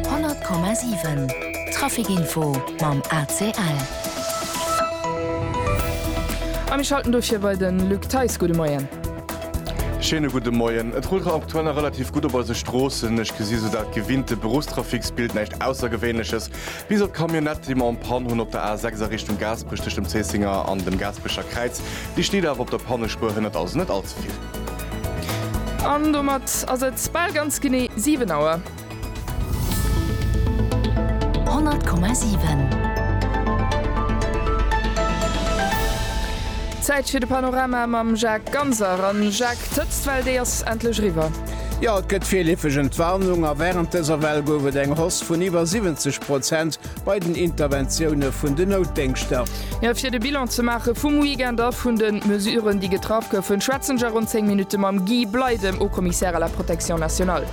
100,7 Trafic Info mam ACL. A mir schalten dofir bei de Luc Theis. Gudde Moien. Schéine gudde Moien. Et rullt aktuell nach relativ gutt op eise Stroossen. Ech gesi sou dat gewinnte Beruffstrafiksbild, näischt Aussergewéinleches, bis op d'Camionnette, déi mer en Panne hunn op der A6 a Richtung Gaasperech tëscht dem Zéissinger an dem Gaasperecher Kräiz. Déi steet awer op der Pannespuer, hënnert also net all ze vill. An domat ass et bal ganz genee 7 Auer. 100,7. Zäit fir de Panorama mam Jacques Ganser. A Jacques, d'Hëtztwell, déi ass endlech eriwwer. Jo, et gëtt virleefeg Entwarnung a wärend dëser Well gouf et eng Hoss vun iwwer 70 Prozent bei den Interventioune vun den Noutdéngschter. Jo, fir de Bilan ze maache vum Weekend a vun de Mesuren, déi getraff goufen, schwätzen ech a ronn 10 Minutte mam Guy Bley, dem Haut-Commissaire à la protection nationale.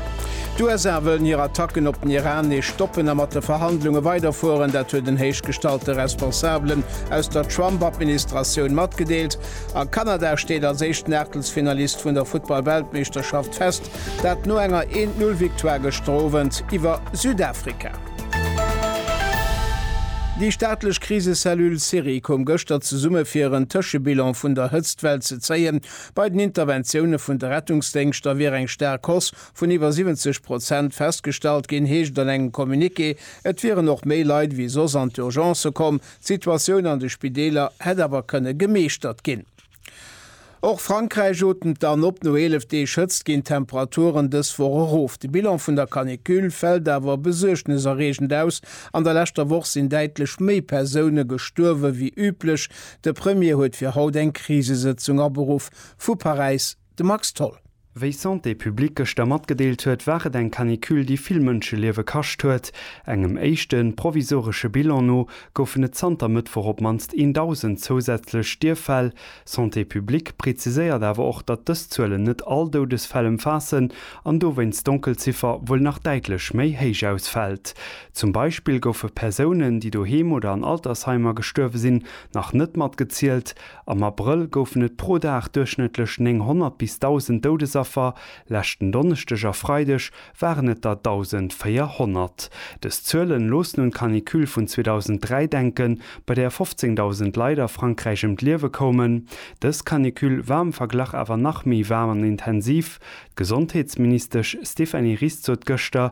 D'USA wëllen hir Attacken op den Iran nees stoppen a mat de Verhandlunge weiderfueren. Dat huet en héichgestallte Responsabelen aus der Trump-Administratioun matgedeelt. A Kanada steet als éischten Aachtelsfinalist vun der Futtball-Weltmeeschterschaft fest, dat no enger 1-Null-Victoire gëschter Owend iwwer Südafrika. Déi staatlech Krisecellule Syrie koum gëschter zesumme fir en Tëschebilan vun der Hëtztwell ze zéien. Bei den Interventioune vun de Rettungsdéngschter wier eng staark Hausse vun iwwer 70 Prozent festgestallt ginn, heescht et an engem Communiqué. Et wieren och méi Leit ewéi soss an d'Urgencë komm. D'Situatioun an de Spideeler hätt awer kënne gemeeschtert ginn. Och Frankräich otemt dann op. No 11 Deeg Hëtzt ginn d'Temperaturen dës Woch erof. De Bilan vun der Canicule fält awer besuergneserreegend aus. An der leschter Woch sinn däitlech méi Persoune gestuerwe wéi üblech. De Premier huet fir haut eng Krisesëtzung aberuff. Vu Paräis, De Max Tholl. Wéi Santé publique gëschter matgedeelt huet, war et eng Canicule, déi vill Mënscheliewe kascht huet. Engem éischte provisoresche Bilan no goufen et zanter Mëttwoch op d'mannst 1.000 zousätzlech Stierffäll. Santé publique preziséiert awer och, datt dës Zuelen net all Doudesfäll ëmfaassen an dowéinst d'Donkelziffer wuel nach däitlech méi héich ausfält. Zum Beispill goufe Persounen, déi doheem oder an Altersheimer gestuerwe sinn, nach net matgezielt. Am Abrëll goufen et pro Dag duerchschnëttlech 900 bis 1.000 Doudesaffer, leschten Donneschdeg a Freideg waren et der 1.400. Dës Zuelen loossen un d'Canicule vun 2003 denken, bei där 15.000 Leit a Frankräich ëm d'Liewe koumen. Dës Canicule war am Verglach awer nach méi waarm an intensiv. D'Gesondheetsministesch Stéphanie Ries sot gëschter,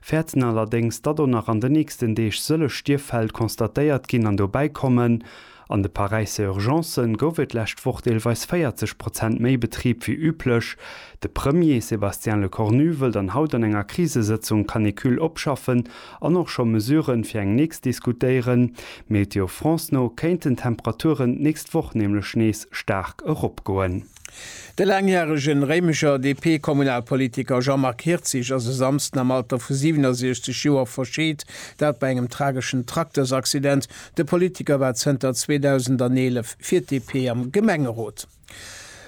Fäerten allerdéngs, datt och nach an de nächsten Deeg sëllech Stierffäll constatéiert ginn an dobäi kommen. An de Paräisser Urgencen gouf et d'lescht Woch deelweis 40 Prozent méi Betrib wéi üblech. De Premier Sébastien Lecornu wëll dann haut an enger Krisesëtzung Canicule opschaffen an och scho Mesuren fir eng nächst diskutéieren. Météo France no kéinten d'Temperaturen d'nächst Woch nämlech nees staark eropgoen. De laangjärege Réimecher DP-Kommunalpolitiker Jean-Marc Hirtzig ass e Samsden am Alter vu 67 Joer verscheet, dat bei engem trageschen Traktersaccident. De Politiker war zënter 2011 fir d'DP am Gemengerot.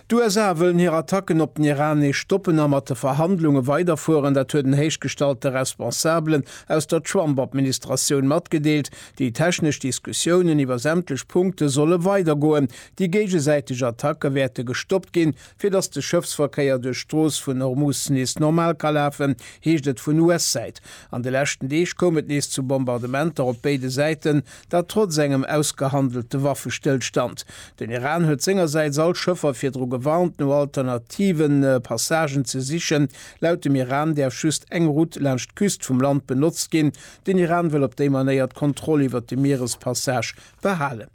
D'USA wëllen hir Attacken op den Iran nees stoppen a mat de Verhandlunge weiderfueren. Dat huet en héichgestallte Responsabelen aus der Trump-Administratioun matgedeelt. Déi technesch Diskussiounen iwwer sämtlech Punkte solle weidergoen, Déi géigesäiteg Attacke wäerte gestoppt ginn, fir datt de Schëffsverkéier duerch d'Strooss vun Hormus nees normal ka lafen, heescht et vun US-Säit. An de leschten Deeg koum et nees zu Bombardementer op béide Säiten, dat trotz engem ausgehandelte Waffestëllstand. Den Iran huet sengersäits all Schëffer virdru gewarnt, no alternative Passagen ze sichen. Laut dem Iran däerf just eng Route laanscht d'Küst vum Land benotzt ginn. Den Iran wëll op déi Manéier d'Kontroll iwwer de Mierespassage behalen.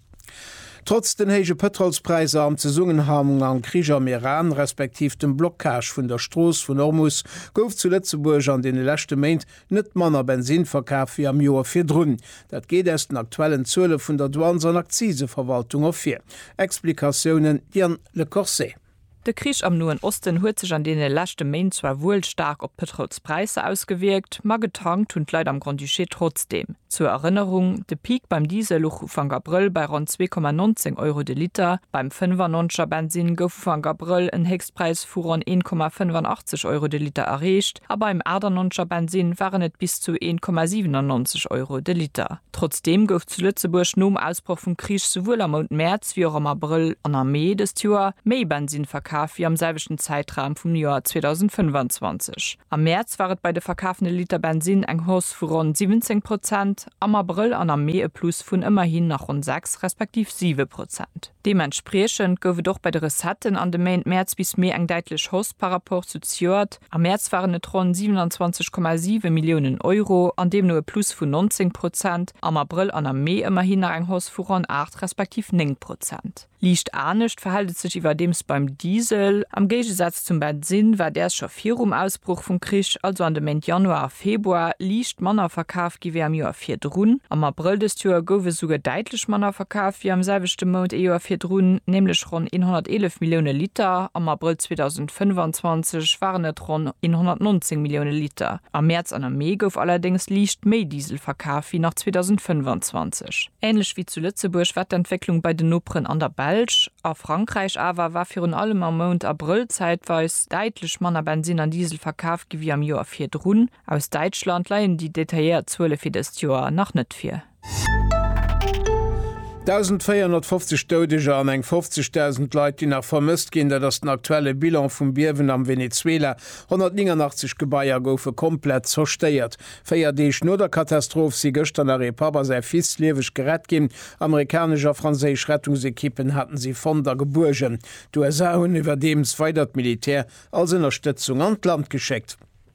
Trotz den héije Pëtrolspräisser am Zesummenhang mam Krich am Iran, respektiv dem Blockage vun der Strooss vun Ormus, gouf zu Lëtzebuerg an deene leschte Méint net manner Bensinn verkaf wéi am Joer virdrun. Dat geet aus den aktuellen Zuele vun der Douanes an Akziseverwaltung ervir. Explikatiounen, Diane Lecorset. De Krich am Noen Osten huet sech an deene leschte Méint zwar wuel staark op d'Pëtrols-Präisser ausgewierkt, ma getankt hunn d'Leit am Grand-Duché trotzdeem. Zur Erënnerung, de Peak beim Diesel luch Ufank Abrëll bei ronn 2,19 Euro de Liter, beim 95er Bensinn gouf Ufank Abrëll en Héchstpräis vu ronn 1,85 Euro de Liter erreecht, A beim 98 er Bensinn waren et bis zu 1,97 Euro de Liter. Trotzdeem gouf zu Lëtzebuerg nom Ausbroch vum Krich souwuel am Mount Mäerz wéi och am Abrëll an am Mee dëst Joer méi Bensinn verkaf wéi am selwechten Zäitraum vum Joer 2025. Am Mäerz war et bei de verkafene Liter Bensinn eng Hausse vu ronn 17 Prozent, am Abrëll an am Mee e Plus vun ëmmerhin nach ronn 6, respektiv 7 Prozent. Deementspriechend gouf et och bei de Recetten an de Méint Mäerz bis Mee eng däitlech Hausse par Rapport zu zejoert, Am Mäerz waren et ronn 27,7 Milliounen Euro an deemno e Plus vun 19 Prozent, am Abrëll an am Mee ëmmerhin nach eng Hausse vu ronn 8 respektiv 9 Prozent. Liicht anescht verhält et sech iwwerdeems beim Diesel. Am Géigesaz zum Bensinn war däers scho virum Ausbroch vum Krich, also an de Méint Januar a Februar, liicht manner verkaf gi wéi am Joer virdrun. Am Abrëll dëst Joer gouf e souguer däitlech manner verkaf wéi am selwechte Mount ee Joer virdrun, nämlech ronn 111 Millioune Liter am Abrëll 2004. 2025 waren et ronn 119 Millioune Liter. Am Mäerz an am Mee gouf allerdéngs liicht méi Diesel verkaf wéi nach 2025. Änlech wéi zu Lëtzebuerg war d'Entwécklung bei den Noperen an der Belsch. A Frankräich awer war virun allem am Mount Abrëll zäitweis däitlech manner Bensinn an Diesel verkaf gi wéi am Joer virdrun. Aus Däitschland leien déi detailléiert Zuele fir dëst Joer nach net vir. 1.450 Doudeger an eng 50.000 Leit, déi nach vermësst ginn, dat ass den aktuelle Bilan vum Biewen am Venezuela. 189 Gebaier goufe komplett zerstéiert. Véier Deeg no der Katastroph si gëschter nach ee Papp a säi Fils lieweg gerett ginn. Amerikanesch a franséisch Rettungsekippen haten si fonnt a gebuergen. D'USA hunn iwwerdeems weider d'Militär als Ënnerstëtzung an d'Land geschéckt.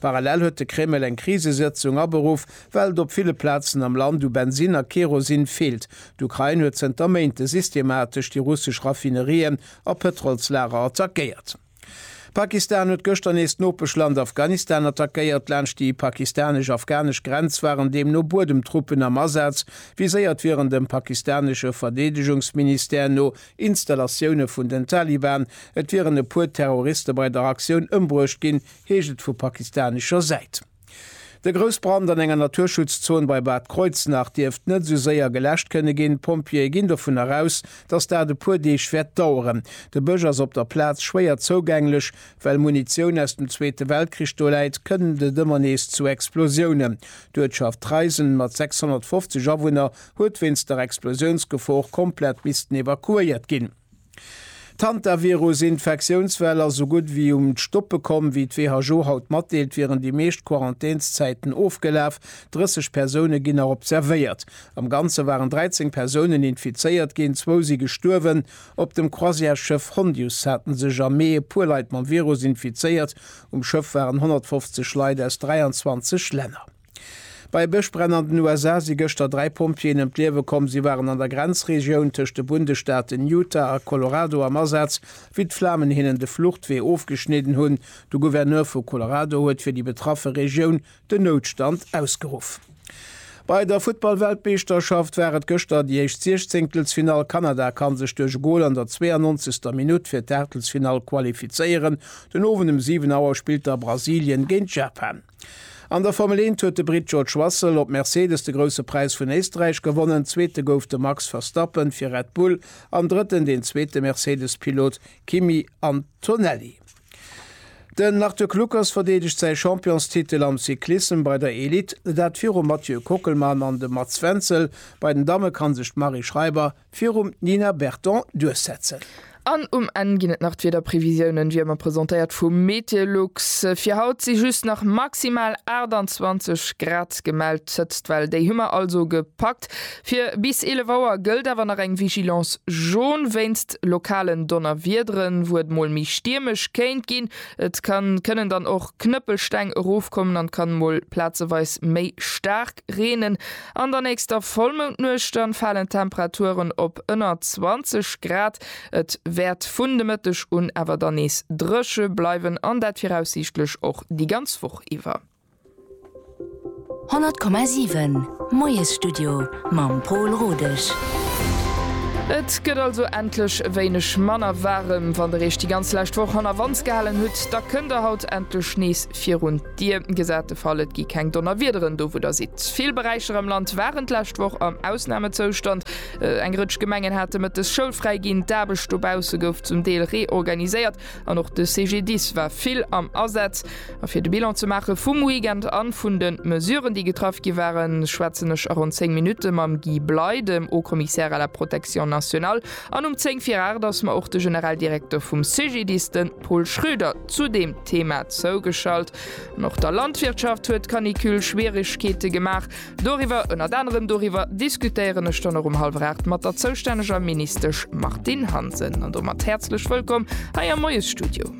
Parallel huet de Kreml eng Krisesëtzung aberuff, well et op ville Plazen am Land u Bensinn a Kerosin feelt. D'Ukrain huet zënter Méinte systematesch déi russesch Raffinerien a Pëtrolslager attackéiert. Pakistan huet gëschter nees d'Nopeschland Afghanistan attackéiert. Laanscht déi pakistanesch-afghanesch Grenz waren deemno Buedemtruppen am Asaz, viséiert wieren dem pakistanesche Verdeedegungsministère no Installatioune vun den Taliban. Et wieren e puer Terroriste bei der Aktioun ëmbruecht ginn, heescht et vu pakistanescher Säit. De Groussbrand an enger Naturschutzzon bei Bad Kreuznach dierft net esou séier geläscht kënne ginn. D'Pompjeeë ginn dovunner aus, datt dat e puer Deeg wäert daueren. De Bësch ass op der Plaz schwéier zougänglech. Well Munitioun aus dem Zweete Weltkrich do läit, kënnt et ëmmer nees zu Explosiounen. D'Uertschaft Treisen mat 650 Awunner huet wéinst der Explosiounsgefor komplett missten evakuéiert ginn. D'Hantavirus-Infektiounswell ass esou gutt ewéi um d'Stoppe komm. Wéi d'WHO haut matdeelt, wieren déi meescht Quarantänszäiten ofgelaf. 30 Persoune ginn nach observéiert. Am Ganze waren 13 Persounen infizéiert ginn, zwou si gestuerwen. Op dem Croisièresschëff Hondius hate sech am Mee e puer Leit mam Virus infizéiert. Um Schëff waren 150 Leit aus 23 Länner. Bei e Bëschbränn an den USA si gëschter dräi Pompjeeën ëm d'Liewe komm. Si waren an der Grenzregioun tëscht de Bundesstaaten Utah a Colorado am Asaz, wéi d'Flamen hinnen de Fluchtwee ofgeschnidden hunn. De Gouverneur vu Colorado huet fir déi betraffe Regioun den Noutstand ausgeruff. Bei der Futtball-Weltmeeschterschaft war et gëschter déi éischt Siechzéngtelsfinall. Kanada kann sech duerch e Gol an der 92. Minutt fir d'Aachtelsfinall qualifizéieren. Den Owend um 7 Auer spillt da Brasilien géint Japan. An der Formel Eent huet de Britt George Russell op Mercedes de Grousse Präis vun Éisträich gewonnen, Zweete gouf de Max Verstappen fir Red Bull an Drëtten den zweete Mercedes-Pilot Kimi Antonelli. Den Arthur Kluckers verdeedegt säi Championstitel am Cyclissem bei der Elite, dat virum Mathieu Kockelmann an dem Mats Wenzel. Bei den Damme kann sech d'Marie Schreiber Virum d'Nina Berton duerchsetzen. An um Enn ginn et nach d'Wiederprevisiounen, wéi ëmmer presentéiert vu Meteolux. Fir haut si just nach maximal 28 Grad gemellt, d'Hëtztwell déi hu mer also gepackt. Fir bis 11 Auer gëllt awer nach eng Vigilance jaune wéinst lokalen Donnerwiederen, wou et mol méi stiermesch kéint ginn. Et kann kënnen dann och Knëppelsteng erofkommen an kann mol plazeweis méi staark. staark reenen. An der nächster Vollmoundnuecht dann falen d'Temperaturen op ënner 20 Grad. Et wäert vun de Mëtteg un awer dann nees dréche bleiwen an dat viraussiichtlech och déi ganz Woch iwwer. 100,7 Moiesstudio mam Pol Rodesch. Et gëtt also endlech e wéineg manner waarem. Wann der Eech déi ganz lescht Woch hannerwands gehalen hutt, da kënnt der haut endlech nees virun. Dir gesät de Fall, et gi keng Donnerwiederen do wou der sidd. Vill Beräicher am Land waren d'lescht Woch am Ausnamezoustand. Eng Rëtsch Gemengen hate mëttes schoulfräi ginn, d'Aarbecht dobausse gouf zum Deel reorganiséiert an och de CGDIS war vill am Asaz. A fir de Bilan ze maache vum Weekend an vun de Mesuren déi getraff gi waren, schwätzen ech a ronn 10 Minutte mam Guy Bley, dem Haut-Commissaire à la Protection nationale. An um 10 vir 8 ass mer och de Generaldirekter vum CGDIS, de Pol Schröder, zu deem Thema zougeschalt. An och der Landwirtschaft huet d'Canicule Schwierigkeete gemaach. Doriwwer, ënnert anerem doriwwer, diskutéieren ech dann och um hallwer 8 mat der zoustänneger Ministesch Martine Hansen. An domat häerzlech wëllkomm hei am Moiesstudio.